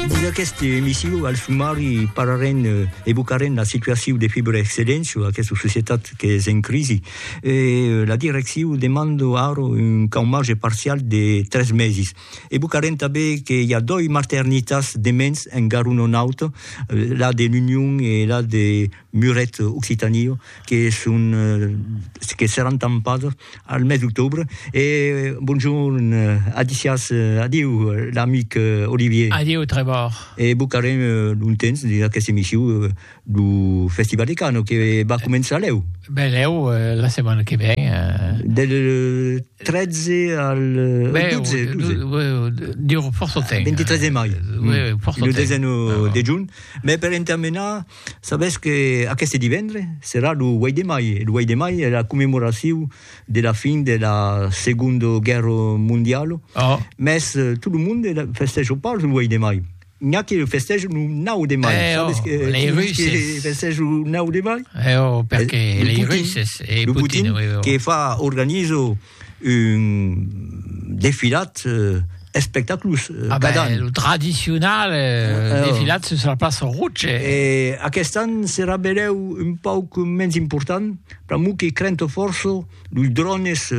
Dins aquesta emission, al sumari, parlarem e evocarem la situacion de Fibra Excellencio, aquesta societat qu'es en crisi. E la direccion demanda ara un caumatge parcial de tres mesis. Evocarem tanben que i a doi maternitats de mens en Garonne Nòrd, la de l'Union e la de Muret, Occitània, que son que seràn tampadas al mes d'octobre e bonjorn adicias adieu l'amic Olivier. Adieu Trevor. E vos carem lontens dins aquesta emission lo festival de Cannes que va començar lèu. Ben lèu la setmana que ven. Del 13 al 12, 12. Dura fòrça temps. 23 de mai. Lo desena de junh, mès per entamenar Sabètz que aqueste divendre serà lo 8 de mai, e lo 8 de mai es la commemoracion de la fin de la Segonda Guèrra Mondiala, mès tot lo monde la festèja pas lo 8 de mai, n'i a que la festèjan lo 9 de mai, sabètz que lei Russes festèjan lo 9 de mai? Lo Putin, que fa, organiza. un defilat espectaculós cada an. Lo tradicional defilat sus la plaça Rouge. E aquest an serà benlèu un pauc mens important, pr'amor que crento fòrça los drones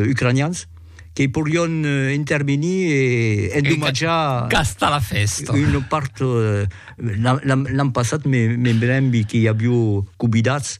ucranians que porián intervenir e endomatjar una part, l'an passat me brembi que i avió cubidats,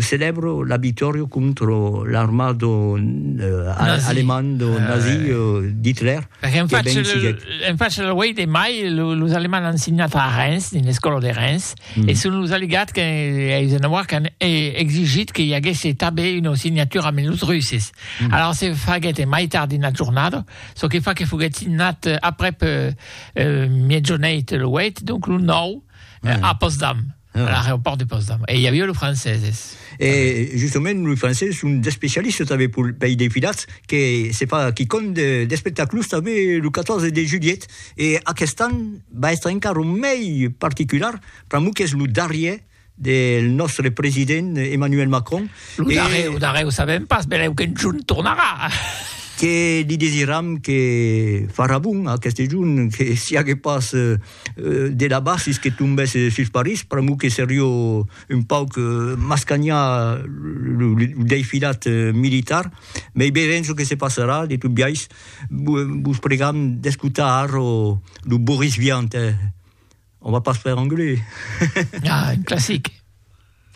Celèbro la victòria contra l'armada alemanda nazi d'Hitler. En fach lo 8 de mai, los alemands an signat a Reims, dins l'escòla de Reims, e son los aliats que Eisenhower qu'an exigit que i aguèsse tanben una signatura amb los russes. Alara se faguèt en mai tard dins la jornada, çò que fa que foguèt signat aprèp miègjorneit lo 8, donc lo 9 a pòstdam. A l'aeropòrt de Potsdam. E i aviá los franceses. E justament los franceses son d'especialistas tanben per i defilats que se fa quicòm d'espectaclus tanben lo 14 de julhet e aqueste an va èstre encara mei particular pr'amor qu'es lo darrièr del nòstre president Emmanuel Macron. Lo darrièr, lo darrièr o sabèm pas, benlèu qu'un jorn tornarà. Que li desiram que farà bon aqueste jorn, que siágue pas de la basis que tombèsse sus París, pr'amor que serió un pauc mascanhar lo deifilat militar, mei veirem çò que se passarà, de tot biais vos pregam d'escotar arro lo Boris Vian, on va pas faire anglais. Ah, un classic!